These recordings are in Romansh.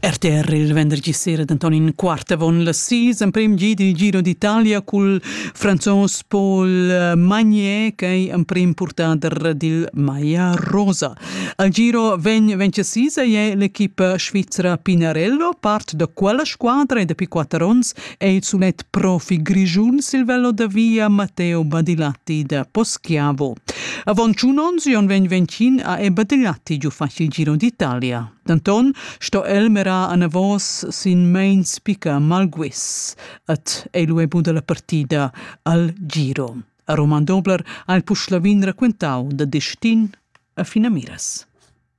RTR il vendergi sera d'Antonin Quart avon la sis emprem gi dil Giro d'Italia cul franzos Paul Magnier ch'ei emprem purtader dil Maya Rosa. Al Giro vegn vencesisa ei l'equipa svizra Pinarello, part da quella squadra e dapi quatter onns è il sulet profi grischun sil velo da via Matteo Badilatti da Poschiavo. Avon tschun ons Jon vegn vencin a e Badilatti giu facil giro d'Italia. D'Anton sto el mera anavos sin mains pica Malguis et è lu ebu dalla partida al giro. A Roman Dobler ha il Puschlavin raquentau da destin a Finamiras.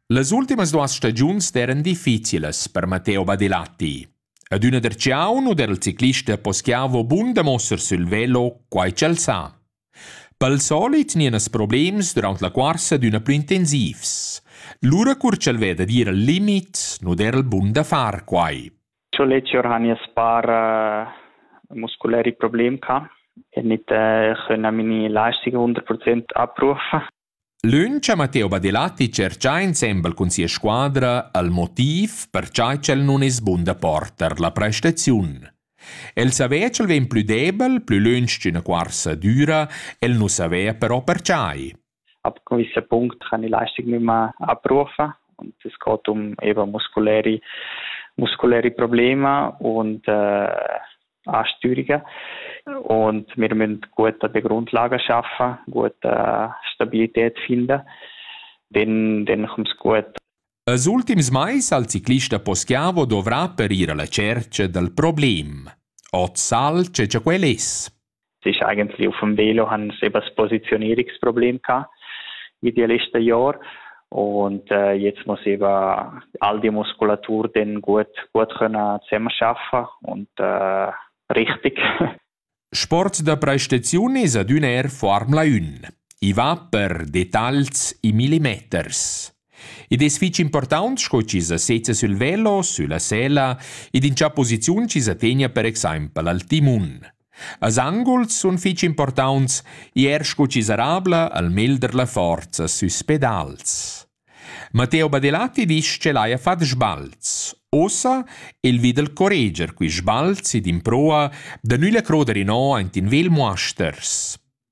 Las ultimas duas stagiuns eran difficilas per Matteo Badilatti. Ad üna der ciaun u der il ciclista poschiavo bunda muossar sül velo quai ch'el sa. Pel solit gnienas problems düraunt la cuorsa adüna plü intensivs. Lura cur ch'el veda d'ir al limit, nu der el bun da far quai. Ch'o leci orhania spar musculeri problem ca e nit ch'ün a mini lasci 100% abbrufa. Lönch ha Matteo Badelatti tscherchà insembel cun sia squadra al motiv per cha ch'el nun es bun da porter la prestaziun. El savea ch'el vegn plü debel, plü lönch ch'üna cuorsa düra, el nu savea però perchai. Ab gewisser Punkt han die Leistung nicht mehr abrufen und es geht um eben muskuläre muskuläre Probleme und äh, a Stürica und wir müssen gute Begrundlage schaffen, gute Stabilität finden, dann, dann kommt es gut. Als ultims mais al ciclista Poschiavo dovrà per ir alla cerca dal problem. Ot sal ce quel es. sich eigentlich auf dem Velo haben sie eben das Positionierungsproblem gehabt wie die letzten Jahre. Und äh, jetzt muss eben all die Muskulatur dann gut, gut können zusammenarbeiten und äh, richtig. Sport da prestazione ad un air Formula 1. I va per detalls i millimeters. Id es fich important sco chi sa sezza sul velo, sulla sela ed in cha posiziun chi sa tegna per exaimpel al timun. Als anguls sun fich importants ir scu chi sarabla al melder la forza süs pedals. Matteo Badilatti disch ch'el haja fat sbalz. Ussa el vi dal correger quist sbalzi d'improa da nügl croder inò aint in Vel Muasters.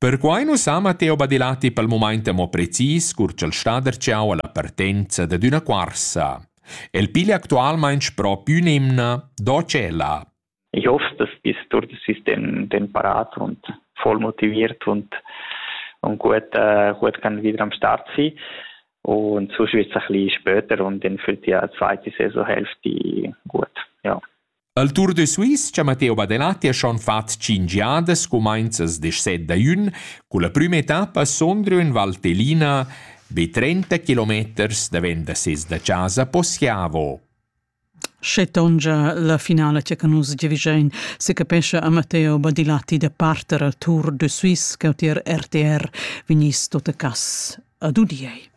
Perquai nu s'ha Matteo Badilatti pel mumaint amo precis cur ch'el sta darcheu alla partenza dad üna cuorsa. El piglia actualmaing spro pü ün'emna do tschella. Ich hoffe, dass bis durch das System den parat und voll motiviert und, und gut, äh, gut kann wieder am Start sein. Und sonst wird es ein bisschen später und dann fällt die zweite Saisonhälfte gut. Ja. Al Tour de Suisse cha Matteo Badenatti ha schon fat tschinch jadas cumainzas desset da jün, culla prüma etappa sondrio in Valtellina be 30 kilometers davent da ses da chasa Poschiavo. Sche tongia la finala cha ca nus giavüschein, se capescha a Matteo Badilatti da parter al Tour de Suisse che tier RTR vegniss tot a cas ad udiei.